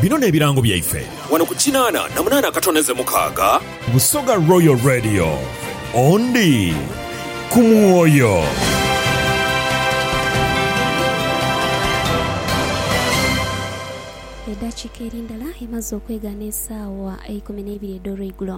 Bino n'ebirango byaife. Wano ku kinaana na munaana akatoneze mukaaga. Busoga Royal Radio, Ondi ku mwoyo. Eddakiika eri ndala emaze okwegha n'esaawa eikumi n'eibiri edh'olweigulo.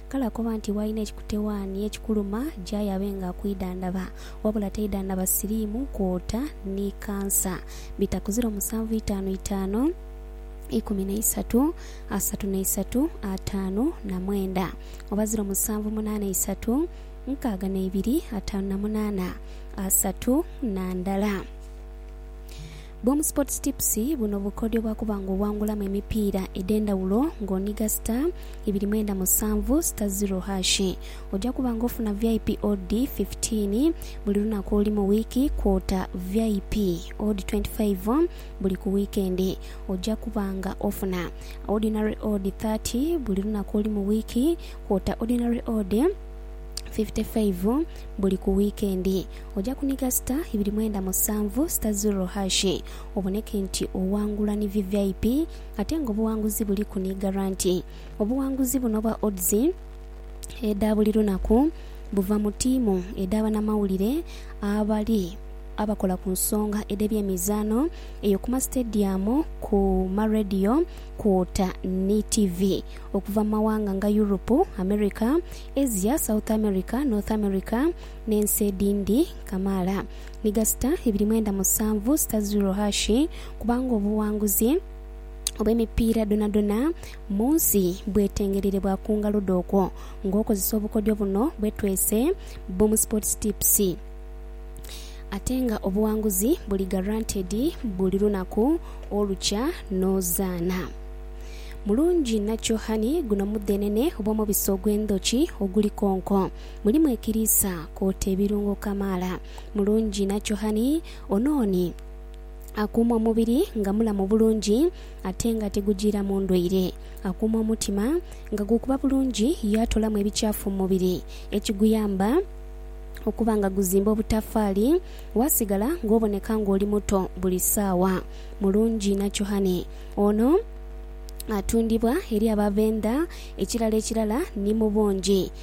Kale akoba nti bw'alina ekikutewaani ekikuluma gy'aye abe nga akwidhandhaba. Wabula taidhandhaba siriimu, kwota ni kansa. Bita ku ziro musanvu itaanu itaanu ikumi na isatu asatu na isatu ataanu na mwenda oba ziro musanvu munaana isatu nkaaga na ibiri ataanu na munaana asatu na ndala. Boom Sports Tips, Buno bukodyo bwa kuba nga owangulamu emipiira edh'endhawulo nga onhiga star ibiri mwenda musanvu star zero hash. Oja kuba nga ofuna vip odd fifteen buli lunaku oluli mu wiiki kwota vip odd twenty five buli ku wiikendi. Oja kuba nga ofuna ordinary odd thirty buli lunaku oluli mu wiiki kwota ordinary odd fifty five buli ku wiikendi. Oja kuniga sita ibiri mwenda musanvu, sita zero hash, oboneke nti owangula ni vvip ate nga obuwanguzi buliku ni garanti. Obuwanguzi buno obwa odds edha buli lunaku buva mu tiimu edha banamawulire abali abakola ku nsonga edhe byemizaano eyo kuma sitediyamu, ku ma radio kwota ni tivi okuva mu mawanga nga Europe, America, Asia, South America, North America, n'ensi edhindi kamaala, ni gasita ibiri mwenda musanvu sita ziro hashi, kubanga obuwanguzi obw'emipiira dhonadhona mu nsi bwetengereire bwa ku ngalo dho okwo ng'okozesa obukodyo buno bwetwese Boom Sports Tips ate nga obuwanguzi buli guaranteed buli lunaku olukya n'ozaana mulungi nakyo Honey, guno mudhenene oba omubisi ogw'endhoki oguli konko. Mulimu ekiriisa kwoota ebirungo kamaala. Mulungi inha kyohani ono ni akuuma omubiri nga mulamu bulungi ate nga tigujiiramu ndwaire. Akuuma omutima nga gukuba bulungi yaatolamu ebikyafu mu mubiri ekiguyamba okuba nga guzimba obutafaali waasigala ng'oboneka ng'oli muto buli saawa. Mulungi inha kyohani ono atundibwa eri abavendha ekirala ekirala ni mu bungi.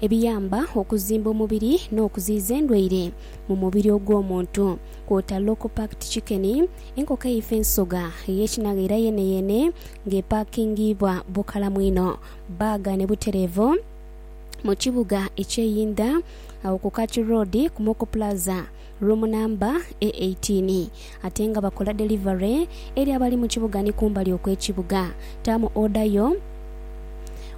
ebiyamba okuzimba omubiri n'okuziyiza endwaire mu mubiri ogw'omuntu kwota Local Packed Chicken, enkoko eifa ensoga ey'ekinagha era yeeneyeene nga epakingiibwa bukalamu inho, bbaaga ne butereevu mu kibuga eky'eyindha agho ku Kachu Road ku Moko Plaza. Room namba e 18 ate nga bakola delivery eri abali mu kibuga ni kumbali okwe kibuga. Taamu order yo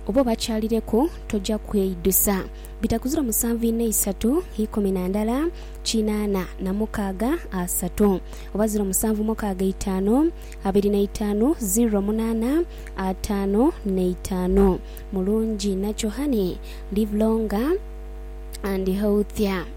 oba obakyalireku toja kweidhusa. Bitakuzira musanvu inha isatu ikumi na ndala kinana na mukaaga asatu oba ziro musanvu mukaaga eitaanu abiri na itaanu ziro munana ataanu na itaanu Mulungi inha kyo honey live longer and healthier.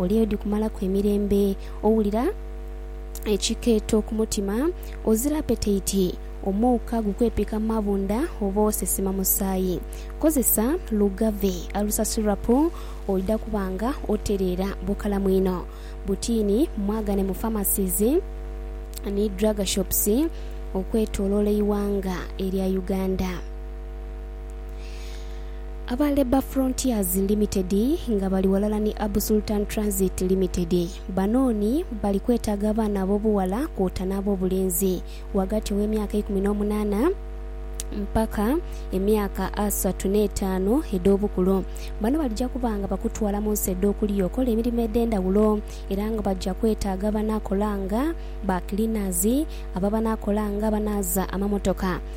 Oli odi kumalaku emirembe. Owulira ekikeeto ku mutima. Ozira apetaiti. Omuuka gukwepika mu mabunda oba osesema musaayi. Kozesa Lugave Alusasulrapu oidha kuba nga otereera bukalamu inho. Butiini mwagane mu pharmacies ni drug shops okwetoloola eighanga erya Uganda. Aba Labour Frontiers Limited nga bali ghalala ni Abu Sultan Transit Limited banooni bali kwetaaga abaana ab'obughala kwota n'ab'obulenzi ghagati gh'emyaka eikumi n'omunaana mpaka emyaka asatu n'etaanu edh'obukulu. Bano balija kuba nga bakutwala mu nsi edh'okuliya okola emirimo edh'endhawulo era nga baja kwetaaga abanaakola nga ba cleaners, abo abanaakola nga abanaaza amamotoka,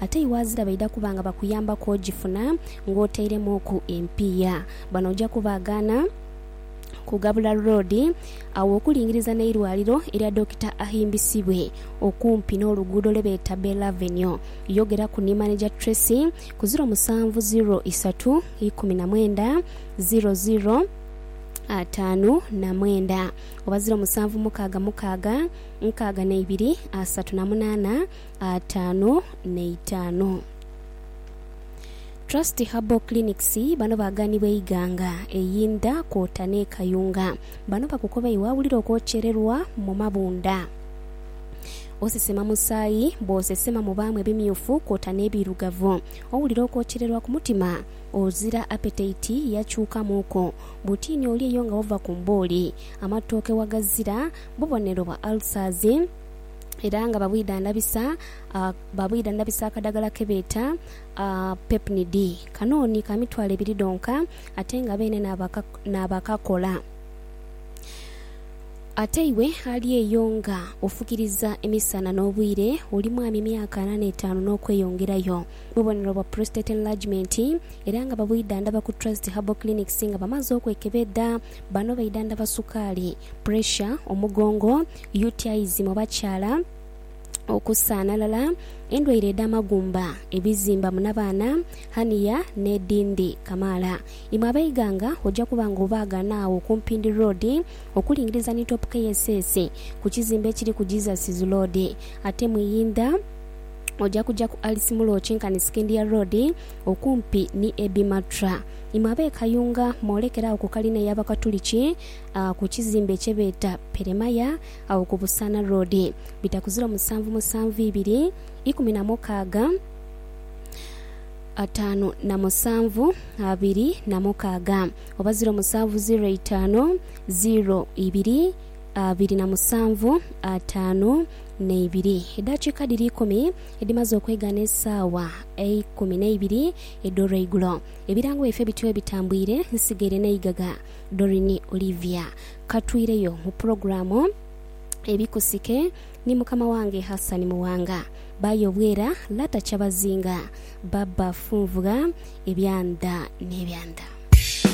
Ate iwe azira baidha kuba nga bakuyambaku ogifuna ng'oteiremuuku empiiya. Bano oja kubaagaana kugabula loodi agho okulingiriza n'eirwaliro erya Dokita Ahimbisibwe okumpi n'oluguudo lwe beeta Bell Avenue. Yogeraku ni Maneja Tracy ku ziro musanvu ziro isatu ikumi na mwenda ziro ziro ataanu na mwenda oba ziro musanvu mukaaga mukaaga nkaaga na ibiri asatu na munaana. ataanu n'eitaanu. Trust Herbal Clinics bano baganibwa eighanga einda kwota n'e Kayunga. Bano bakukoba iwe awulira okwokyererwa mu mabunda, osesema musaayi, bwosesema mubaamu ebimyufu kwota n'ebiirugavu, owulira okwokyererwa ku mutima, ozira apetaiti yakyukamuuku, butiini olya eyo nga wava ku mbooli, amatooke wagazira, bubonero bwa ulcers. era nga babwidhandhabisa babwidhandhabisa akadhagala ke beeta Pepnid. Kano ni ka mitwalo ebiri dhonka ate nga beene naabakakola. Ate iwe ali eyo nga ofukiriza emisana n'obwire, oli mwami myaka ana n'etaanu n'okweyongerayo, bubonero bwa prostate enlargement era nga babwidhandhaba ku Trust Herbal Clinics nga bamaze okwekebedha. Bano baidhandhaba sukaali, puresha, omugongo, UTIs mu bakyala, okusaanhalala, endwaire edh'amagumba, ebizimba mu nabaana, hernia, n'edhindhi kamaala. Imwe ab'eighanga oja kuba nga obaagana agho ku Mpindi Road okulingiriza ni Top KSS ku kizimbe ekiriku Jesus's Lord. Ate mu Iyindha oja kuja ku Alice Mulo okinkane Scindia Road okumpi ni Ebimatra. Imwe ab'e Kayunga mwolekere agho ku kalina ey'Abakatuliki ku kizimbe kye beeta Peremaya agho ku Busaana Road. Bita ku ziro musanvu musanvu ibiri, ikumi na mukaaga, ataanu na musanvu, abiri na mukaaga oba ziro musanvu ziro eitaanu, ziro ibiri, abiri na musanvu, ataanu n'eibiri. Edaakiika dhiri ikumi edhimaze okwegana esaawa eikumi n'eibiri, Edh'olweigulo. Ebirango byaife bityo ebitambwire, nsigaire n'eighagha. Doreen Olivia. Ka tweireyo mu pulogulaamu Ebikusike ni mukama wange Hassan Muwanga. Bayo Bwera, Lata Kyabazinga, Baba Funvugha, Ebya Ndha n'ebya Ndha.